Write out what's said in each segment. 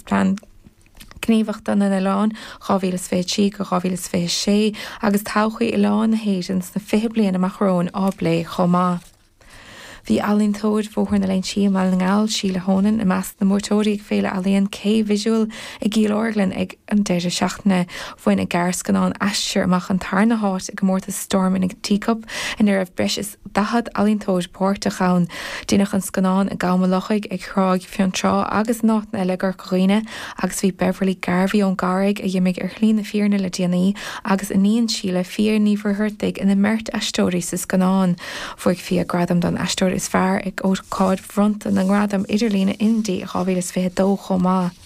Plean Gníomhachta na nOileán 2023-2026 agus todhchaí Oileán na hÉireann sna fiche bliain amach romhainn á bplé chomh maith. Bhí ealaíontóir Bhóthar na Leinsí i mBaile na nGall, Sheelagh Honan, i measc na mbuaiteoirí ag Féile Ealaíon K Visual i gCill Orglan ag an deireadh seachtaine. Bhain a gearrscannán Aistear amach an tarna háit i gcomórtas Storm in a Teacup ina raibh breis is 40 ealaíontóir páirteach ann. Deineadh an scannán i gCam an Lochaigh, ar Thráigh Fionntrá agus in áiteanna eile i gCorca Dhuibhne agus bhí Beverly Garvey ón gCarraig, a dh'imigh ar shlí na fírinne le déanaí, agus iníon Sheelagh, Fiadh Ní Mhuircheartaigh, ina mbeirt aisteoirí sa scannán. Bhuaigh Fiadh gradam don aisteoir is fearr ag ócáid bhronnta na ngradam idirlíne Indie 2022 chomh maith.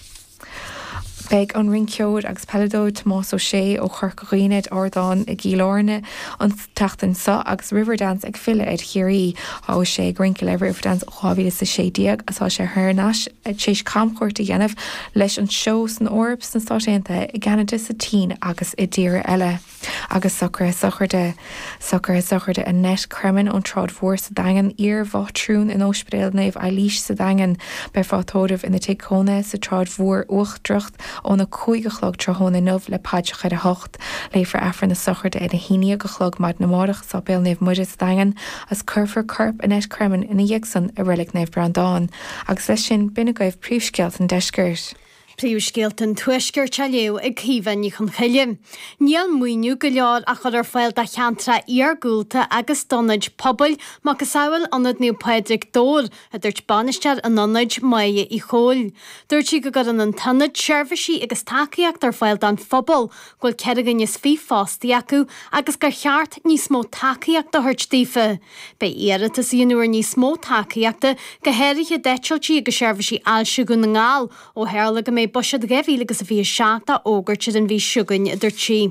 Beidh an rinceoir agus peileadóir Tomás Ó Sé ó Chorca Dhuibhne ar ardán i gCill Áirne an tseachtain seo agus Riverdance ag filleadh ar Chiarraí. Tá Ó Sé ag rince le Riverdance ó 2016 agus tá sé thar n-ais tar éis camchuairt a dhéanamh leis an seó san Eoraip, sna Stáit Aontaithe, i gCeanada, sa tSín agus i dtíortha eile. agus socruithe sochraide, socruithe sochraide Annette Cremin ón tSráid Mhór sa Daingean, iarmhátrún in Óispidéal Naomh Eilís sa Daingean. Beifear á tórramh ina tigh cónaithe sa tSráid Mhór Uachtarach óna 5 a chlog tráthnóna inniu le paidreacha ar a hocht. Léifear Aifreann na Sochraide ar a haon dhéag a chlog maidin amárach i Sáipéal Naomh Muire sa Daingean agus cuirfear corp Annette Cremin ina dhiaidh san i Reilig Naomh Breandán. Agus leis sin, b'in agaibh príomhscéalta an Deiscirt. Príomhscéalta an Tuaiscirt á léamh ag Caoimhe Ní Chonchoille. Níl maoiniú go leor á chur ar fáil do cheantracha iargúlta agus d'ionaid pobail, macasamhail Ionad Naomh Pádraig, Dobhar, a dúirt bainisteoir an ionaid, Máire Uí Chomhaill. Dúirt sí go gcuireann an t-ionad seirbhísí agus tacaíocht ar fáil don phobal bhfuil ceithre dhuine is fiche fostaithe acu agus gur cheart níos mó tacaíocht a thabhairt daofa. Beidh iarratas inniu ar níos mó tacaíochta, go háirithe d'eitiltí agus seirbhísí ailse Dhún na nGall, ó tharla go mbeidh buiséad dhá mhíle agus a fiche seacht á fhógairt ar an mhí seo chugainn, a dúirt sí.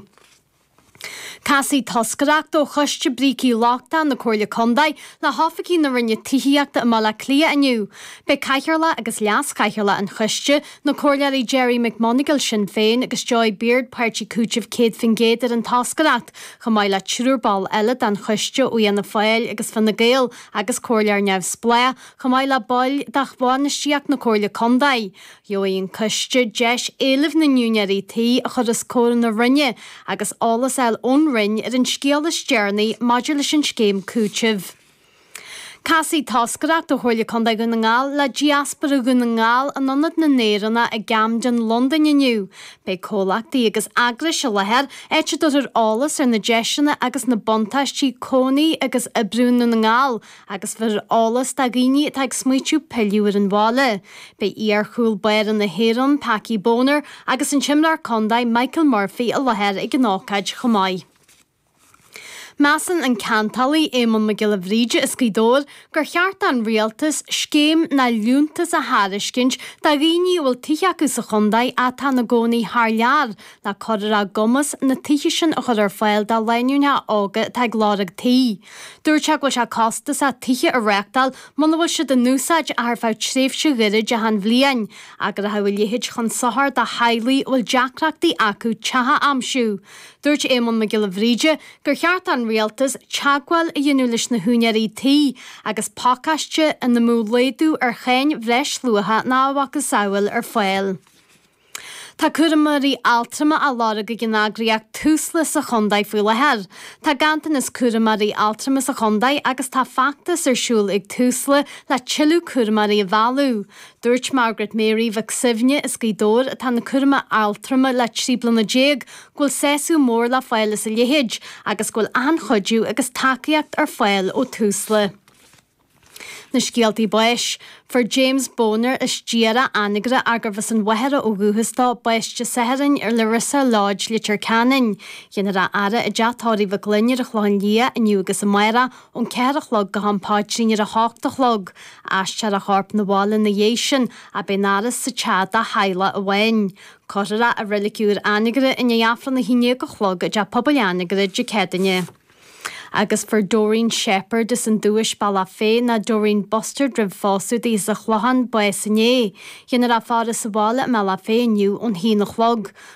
Casfaidh toscaireacht ó Choiste Brící Lochtacha na Comhairle Contae le hoifigigh na Roinne Tithíochta i mBaile Átha Cliath inniu. Beidh cathaoirleach agus leaschathaoirleach an choiste, Na Comhairleoirí Gerry McMonagle, Sinn Féin, agus Joy Beard, Páirtí Cúitimh 100% ar an toscaireacht, chomh maith le triúr ball eile den choiste ó Fhianna Fáil agus Fine Gael agus Comhairleoir Neamhspleách, chomh maith le baill de bhainistíocht na Comhairle Contae. Gheobhaidh an coiste deis éilimh na n-úinéirí tí a chur os comhair na Roinne agus eolas a fháil ón Roinn ar an scéal is deireanaí maidir leis an scéim cúitimh. Casfaidh toscaireacht ó Chomhairle Contae Dhún na nGall le Diaspóra Dhún na nGall in Ionad na nÉireannach i gCamden, Londain inniu. Beidh comhlachtaí agus eagrais i láthair áit a dtabharfar eolas ar na deiseanna agus na buntáistí cónaí agus oibriú i nDún na nGall agus bhéarfar eolas do dhaoine atá ag smaoitiú pilleadh ar an bhaile. Beidh iar-chúl báire na hÉireann, Packie Bonner, agus an t-imreoir contae, Michael Murphy, i láthair ag an ócáid chomh maith. Measann an Ceantálaí Éamonn Mac Giolla Bhríde as Gaoth Dobhair gur cheart don Rialtas scéim nó liúntas a thairiscint do dhaoine a bhfuil tithe acu sa chontae atá ina gcónaí thar lear le cur ar a gcumas na tithe sin a chur ar fáil do lánúineacha óga atá ag lorg tí. Dúirt sé go bhfuil sé costasach tithe a reáchtáil muna bhfuil siad in úsáid ach ar feadh tréimhse ghairid achan bhliain agus go rachadh a leithéid chun sochair do theaghlaigh a bhfuil deacrachtaí acu teach a aimsiú. Dúirt Éamonn Mac Giolla Bhríde gur cheart don Rialtas teagmháil a dhéanamh leis na húinéirí tí agus pacáiste ina mbeadh laghdú ar cháin bhreisluacha nó a mhacasamhail ar fáil. Tá cúramóirí altrama á lorg ag an eagraíocht Tusla sa chontae faoi láthair. Tá ganntanas cúramóirí altrama sa chontae agus tá feachtas ar siúl ag Tusla le tuilleadh cúramóirí a mhealladh. Dúirt Margaret Mary Mhic Suibhne as Gaoth Dobhair, atá ina cúramóir altrama le trí bliana déag, go bhfuil sásamh mór le fáil as a leithéid agus go bhfuil achan chuidiú agus tacaíocht ar fáil ó Tusla. Na scéaltaí báis. Fuair James Boner as Diarach Anagaire arbh as an Mhachaire ó dhúchas dó, bás Dé Sathairn ar Larissa Lodge, Leitir Ceanainn. Dhéanfar a fhaire i dteach tórraimh Mhic Fhloinn ar an Chlochán Liath inniu agus amárach, ón ceathair a chlog go ham paidrín ar a hocht a chlog. Aistreofar a chorp 'na bhaile 'na dhéidh sin, agus beidh an fhaire sa teach dá theaghlach amháin. Cuirfear é i reilig úr Anagaire i ndiaidh Aifreann a haon déag a chlog i dTeach Pobail Anagaire Dé Céadaoine. Agus fuair Doreen Sheppard as an Dubhais, Bealach Féich, nó Doreen Bustard roimh phósadh di as an Chlochán bás inné. Dhéanfar a faire sa bhaile i mBealach Féich inniu ón haon a chlog.